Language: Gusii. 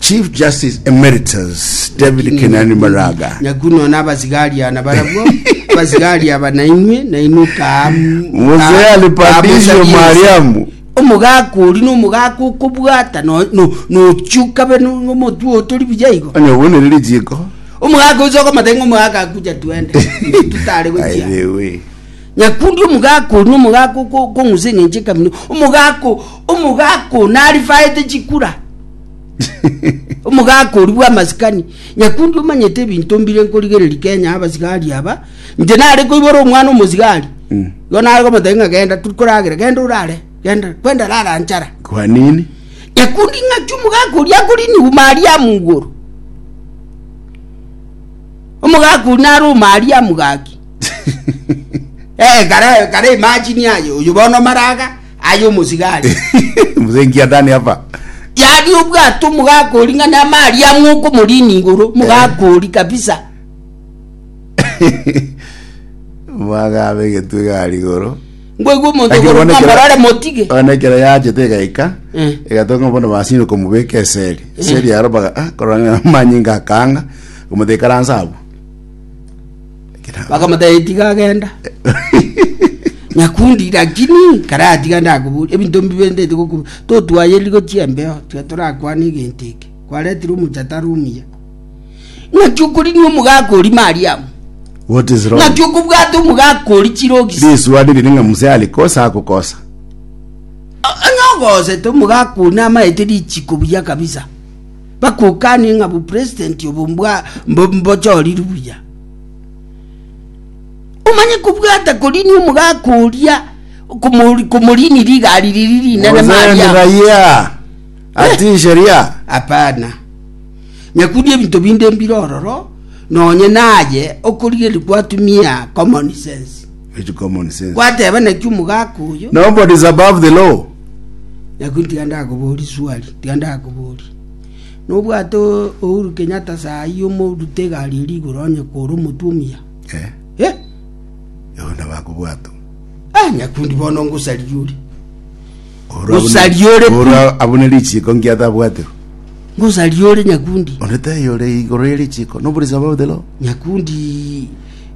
Chief Justice Emeritus David Lakini Kenani nyakundi- Maraga nyakuno nabasigari ana barabwo abasigari aba nainwe nainwe ka Mzee alipandisha Mariamu omogaka ori na omogaka okobwata no- no- nochuka be no- nomotwe otori buya igo onye obonere rijiko omogaka oise okomatenge omogaka akuja twende tutare gochia Airewe. Nyakundi omogaka oria, omogaka okong'usa eng'encho ekamina, omogaka omogaka o narifaete chikura omogaka oria bw'amasikani nyakundi omanyete ebinto mbire nkorigereri kenya abasigari aba inche nare koibora omwana omosigari mm. igo nare komotebia ng'a genda turi koragera genda orare genda kwenda rara nchara kwa nini nyakundi ng'aki omogaka oria akorinigwa mariamu igoro omogaka oria nare omariamu gaki Eh, kare kare imagine aye oyo bono maraga aye omosigari. Mzee nkia ndani hapa. Yari obwato mogakori ng'a namari ang'o okomorina igoro mogakori kabisa. Mwagabe egetwe gari igoro. Ngoigwa omonto Lakini ogoro one kera- ng'amorore motige. one ekero yachete egaika Mm. egatonga bono basini komubeka eseri eseri yaro baga ah, korora ng'a manyinga akanga komoteka ransa abwo Ekero- bakamotebia tiga agenda nyakundi lakini karatiga ndakobori ebinto mbibe ndete goku totwayeriri gochia embeo tiga torakwane egento eke kwaretire omocha tari omuya ng'aki okorinia omogaka oria mariamu what is wrong? ng'aki okobwata omogaka oria chirogisi Risuani riri ng'a mzee alikosa akokosa. onye ogosete omogaka oria namaete richiko buya kabisa Bakokanie ng'a bopresident obo mbochorirwe buya. Omanye kobwata koriini omogaka oria komoriini rigari riri rinene maria. Raia ati sheria. Hapana. Nyakundi ebinto binde mbire ororo nonye naye okorigeria gwatumia common sense. Which common sense? Gwateba naki omogaka oyo. Nobody is above the law. Nakio tiga ndakoborie swali, tiga ndakoborie. Nobwate Uhuru Kenyatta sahi omorute egari eria igoro onye kore omotwe omuya? Eh, Eh, ego nabakobwatwa. ah, nyakundi bono ngosaririe ore. Oro abune- Gosari ore pi. Oro abune richiko nkiatabwatire. Ngosaririe ore nyakundi. Onde taiyo ore igoro ye richiko. Nobody is above the law. Nyakundi